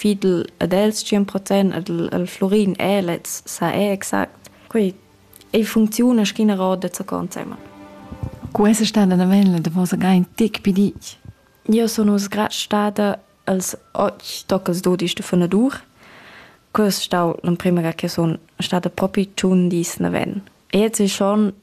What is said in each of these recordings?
fidel ad els 100% al, al Florin è lez sa è exact quei ei funcziuna schina roda da consema Questa stada da vella da vosa gain tic pidic? Io sono sgrad stada als ochi tocas dodisch de fanadur. Quest stau l'emprima ga che son stada propi tun dis na ven. E jetzt ist schon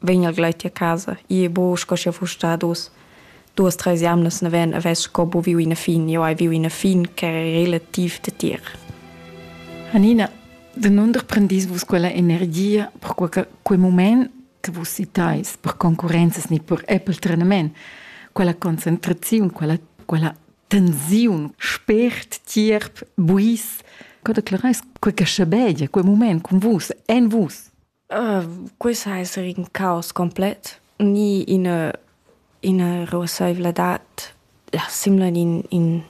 vegn el gleiti a casa, ie bu sco sche fuss stat uss duas treis jamnas naven avess sco bu viu ina fin, io hai viu ina fin che è relativ detir. Anina, de non prendis vus quella energia per quel, quel moment che vus citais per concurenzas ni per Apple trenament, quella concentrazione, quella, quella tensiun, spert, tierp, buis, co declarais quel che schabegia, quel moment con vus, en vus? Quei sa esser in caos complet ni ina ina ruasseivladad simla in in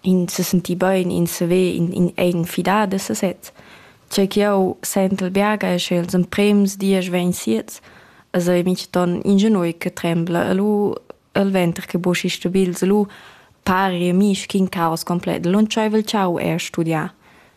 in sesentir bein, in saver, in in eigen fidar da sesez. Tgei ch'jeu sentel biaga è, sche ils emprems dies vegn siets e sei mintgaton ingenui che trembla e lu il venter che boschi stabils e lu pari a mi sc'in caos complet. Lantscheivel tschau è studiar.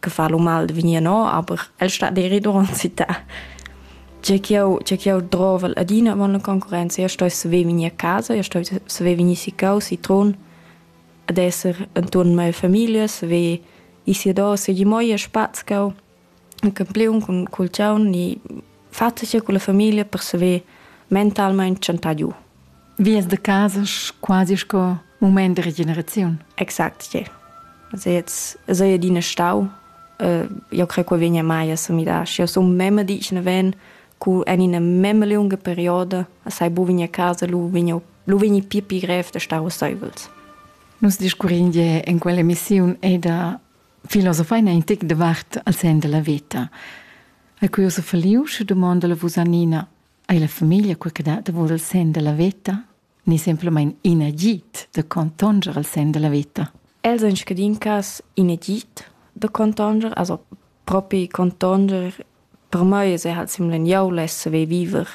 che fa lu mal de vegnir no, aber el stat deri duront città. Tge ch'jeu tge ch'jeu drovel adina avon la concurrenza, io sto saver vegnir a casa, io sto saver vegnir si cau, si Trun, ad esser enturn mia famiglia, saver ir si ad ossa, gi mo ir a spaz cau, un campiun cun cul tgaun, ni fatg cun la famiglia per saver mentalmein tschantar giu. Vies de casa quasi sco moment de regeneraziun. Exact, yeah. Also jetzt, also ja deine Stau, uh, io credo che vegna mai a somidar. Și eu sunt meme dicene ven, cu en ina meme lunga perioda, assai bu vegna a casa, lu vegna, lu vegni pia pi grev de stau soivels. Nus discurrin je in quella emissiun e da filosofai in tic de vart al sen della vita. A cui oso faliu, și domanda la Vusanina, Ei la famiglia quei che dat davor il senn dalla veta? Ni semplamein in agid da contonger il senn dalla veta? Els ein scadin cas in agid da contonger, also propi contonger per mei es halt simpeln jau less saver viver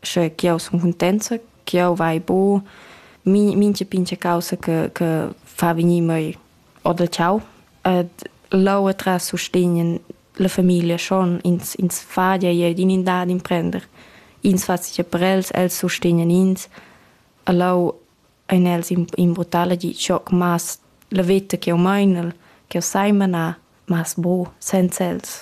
sche ch'jau sun cuntenza, ch'jau vai bo, mincha pincha causa che, che fa vegnir mei oder ciao. Ed leu atras sustegnen la famiglia schon, ins ins fadia jeu d'in in dad imprender. Ins fa sia per els, els sustegnan ins. E leu ein els imbruttala di schoc mas la veta ch'jeu meinel, ch'jeu sai manar, mas bu senza els.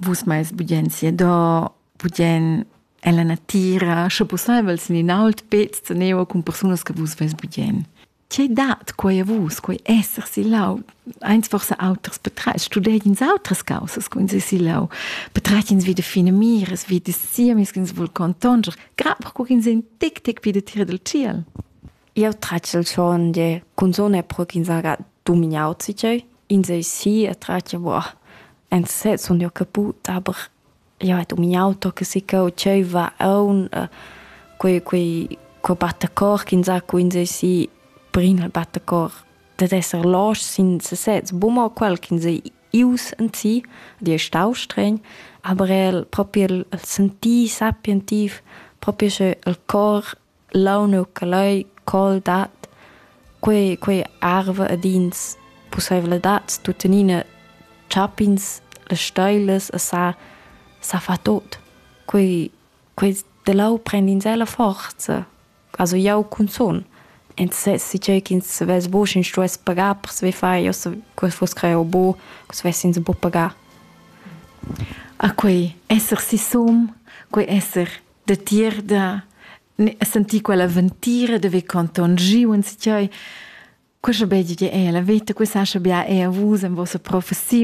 Vus meis budien siador, budien ella natira, sche pusseivel sin in ault pez zaneva cun persunas che vus veis budien. Tge dat quai a vus, quei esser si lau? Eins forse auters betreits, studeigins autras causas con si si lau, betreitins wie de fine mires, wie de siemis ins vul contonger, grad perco ch'ins ein tic tic pi de tira del ciel. Eu tratg il schon de cunzone pro ch'ins haga dumignau si tgei. Ins ei si e tratg, boah, en sez sun jeu caput, aber ja ed um in auto che si cheu tscheiva aun quei quei co battacor ch'insacco insai si prin al battacor dad esser losch sin sesez bumma quel ch'insai ius en si di è stau stregn aber el propi el sentir sapientiv propi sche el cor Leu nu che leu col dat quei quei arva ed ins pusseivladads tuttenina chap'ins las steilas e sa sa fa tot. Quei quei da leu prend'ins ella forza. Also jau cunzun. Ins sez tgei ch'ins vess buc ins stuess pagar per saver far. Io se quel fuss creo bu, co svess'ins buc pagar. A quei esser sisum, quei esser datier da sentì quella ventira de ve conton giu en skioi Questo bedi è la vita, questa scha bia è a vus en vostra professiun.